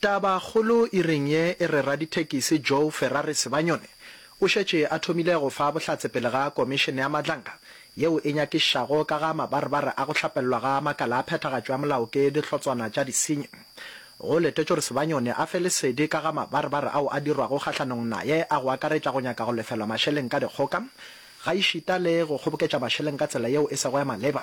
Tabakgolo e reng ye e re radithekisi Joe Ferrari Sebanyone o šetše a thomile go fa bohlatse pele ga Komišene ya Madlanga yeo e nyakišago ka ga mabarebare a go hlapellwa ga makala a phethagatšo ya molao ke dihlotswana tša disenyi. Go letetšwe gore Sebanyone a fe lesedi ka ga mabarebare ao a dirwago kgahlanong naye a go akaretša go nyaka go lefelwa mašeleng ka dikgoka gaešita le go kgoboketša mašeleng ka tsela yeo e sego ya maleba.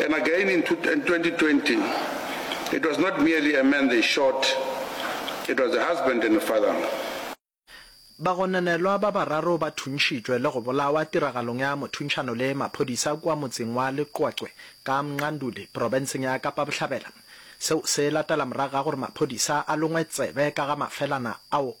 And again in 2020, it was not merely a man they shot, it was a husband and a father. Bagononelwa ba bararo ba thuntšhitšwe le go bolawa tiragalong ya mothuntšhano le maphodisa kua motseng wa Leqwaqwe ka Mnganduli, profenseng ya Kapa Bohlabela. Seo se latela morago ga gore maphodisa a longwe tsebe ka ga mafelana ao.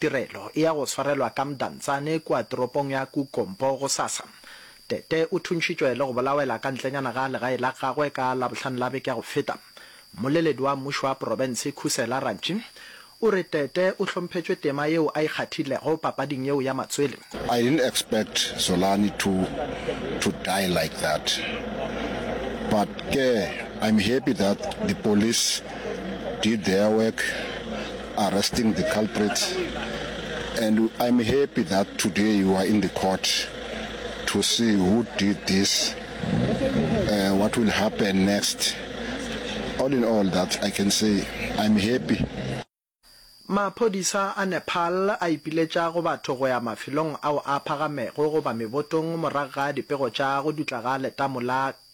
Tirelo e ya go swarelwa ka Mdantsane kua toropong ya Kukompo gosasa. Tete o thuntšhitšwe le go bolawela ka ntlenyana ga legae la gagwe ka Labohlano la beke ya go feta. Mmoleledi wa mmušo wa porofense Khusela Rantshi o re Tete o hlomphetšwe tema yeo a e kgathilego papading yeo ya matswele. I didn't expect Zolani to to die like that but ke I'm happy that the police did their work. arresting the culprit and I'm happy that today you are in the court to see who did this, uh, what will happen next. All in all that I can say I'm happy. Maphodisa a Nepal a ipiletša go batho go ya mafelong ao a phagamego goba mebotong morago ga dipego tša go dutla ga letamo la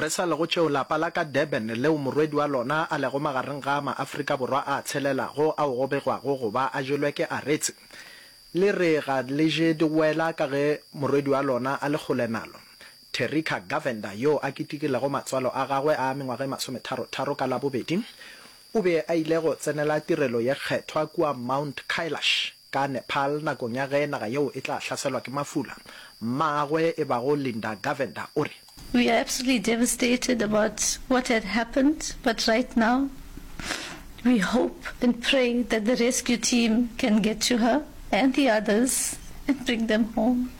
Re sa lego tšeo, lapa la ka Durban, leo morwedi wa lona a lego magareng ga a Maafrika Borwa a tshelelago, ao go begwago go ba a jelwe ke aretse, le re ga le je digwela ka ge morwedi wa lona a le kgole nalo. Terrika Govender, yo a kitikilego matswalo a gagwe a mengwaga e masometharo-tharo ka Labobedi, o be a ile go tsenela tirelo ye kgethwa kua Mount Kailash, Ka Nepal nakong ya ge naga yeo e tla hlaselwa ke mafula, mmaagwe e bago Linda Govender o re, We are absolutely devastated about what had happened but right now we hope and pray that the rescue team can get to her and the others and bring them home.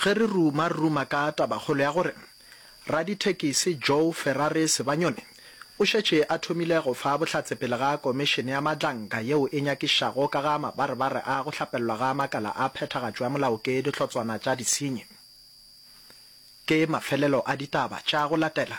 Ge re ruma-ruma ka tabakgolo ya gore radithekisi Joe Ferrari Sebanyone o šetše a thomile go fa bohlatse pele ga Komišene ya Matlanka yeo e Nyakišago ka ga Mabarebare a go Hlapellwa ga Makala a Phethagatšo ya Molao ke Dihlotswana tša Disenyi, ke mafelelo a ditaba tša go latela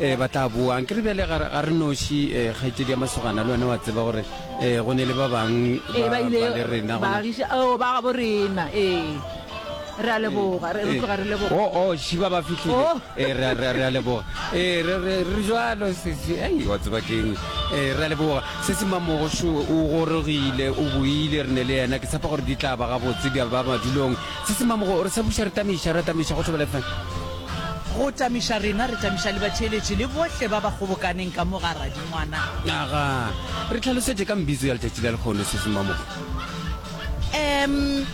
um ba tla boa ke re bjale ga re noši um eh, kgaitsedi ya masogana le one wa tseba gore um go ne le ba bangwe eh, ba le rena oh, ba gabo rena ee re a leboga re tloga re leboga o oh, o oh, šiba ba fitlhile oh. ee re a leboga ee re jalo sese ei wa tseba keng ee re a leboga se se mamogoso o gorogile o boile re ne le yena ke tshepa gore di tla ba gabotse di ba madulong se se mamogo re sa buša re tameiša re tameiša go tlhoba lefeng Go tamiša rena, re tamiša le batheeletši le bohle ba ba kgobokaneng ka mo ga Radingwana. Aga, re tlhalosetše ka mbizo ya letšatši la lekgono sesimamoko. Em,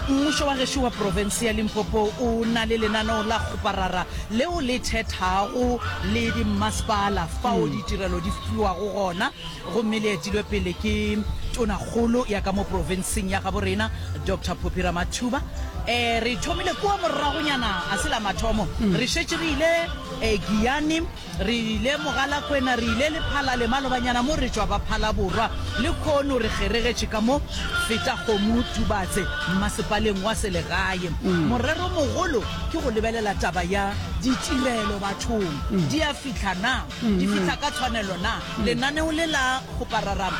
mmušo wa gešo wa profense ya Limpopo o na le lenaneo la kgoparara leo le thethago le dimmasepala fao ditirelo di fiwago gona. gomme le etilwe pele ke Tonakgolo ya ka mo profenseng ya gabo rena, Doctor Phophi Ramathuba. E, re thomile kua moragonyana, a se la mathomo, re šetše re ile e, Giyani, re ile Mogalakwena, re ile Lephalale, malobanyana mo re tšwa ba Phalaborwa, le khono re kgeregetše ka mo Fetakgomo, Tubatse, mmasepaleng wa selegae. Morero mogolo ke go lebelela taba ya ditirelo bathong, di a fihla na? Di fihla ka tshwanelo na? Lenaneo le la go pararama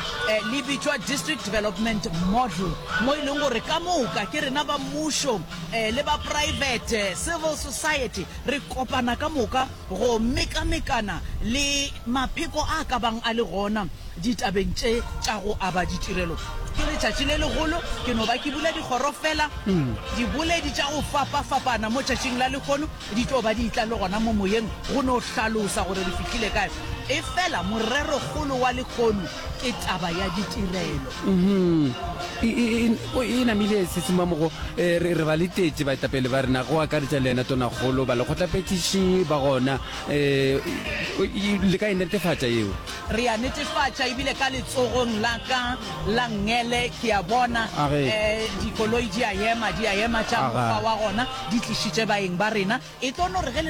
le bitšwa District Development Model, mo e leng gore ka moka ke rena ba mmušo le ba poraefete, civil society, re kopana ka moka go mekamekana le mapheko a ka bang a le gona ditabeng tše tša go aba ditirelo. Ke letšatši le legolo, ke no ba ke bula dikgoro feela, diboledi tša go fapafapana mo tšatšing la lehono Di tlo ba di tla le gona mo moyeng go no hlalosa gore re fihlile kae. Efela morerokgolo wa lekhono ke taba ya ditirelo. Uhm, e namile Tsitsimmamogo. Re ba letetše baetapele ba rena, go akaretša le yena Tonakgolo, balekgotlaphethiši ba gona. Le ka e netefatša yeo. Re a netefatša, ebile ka letsogong la ka la ngele ke a bona dikoloi di a ema, di a ema tša mokgwa wa gona, di tlišitše baeng ba rena. E tlo no re ge le.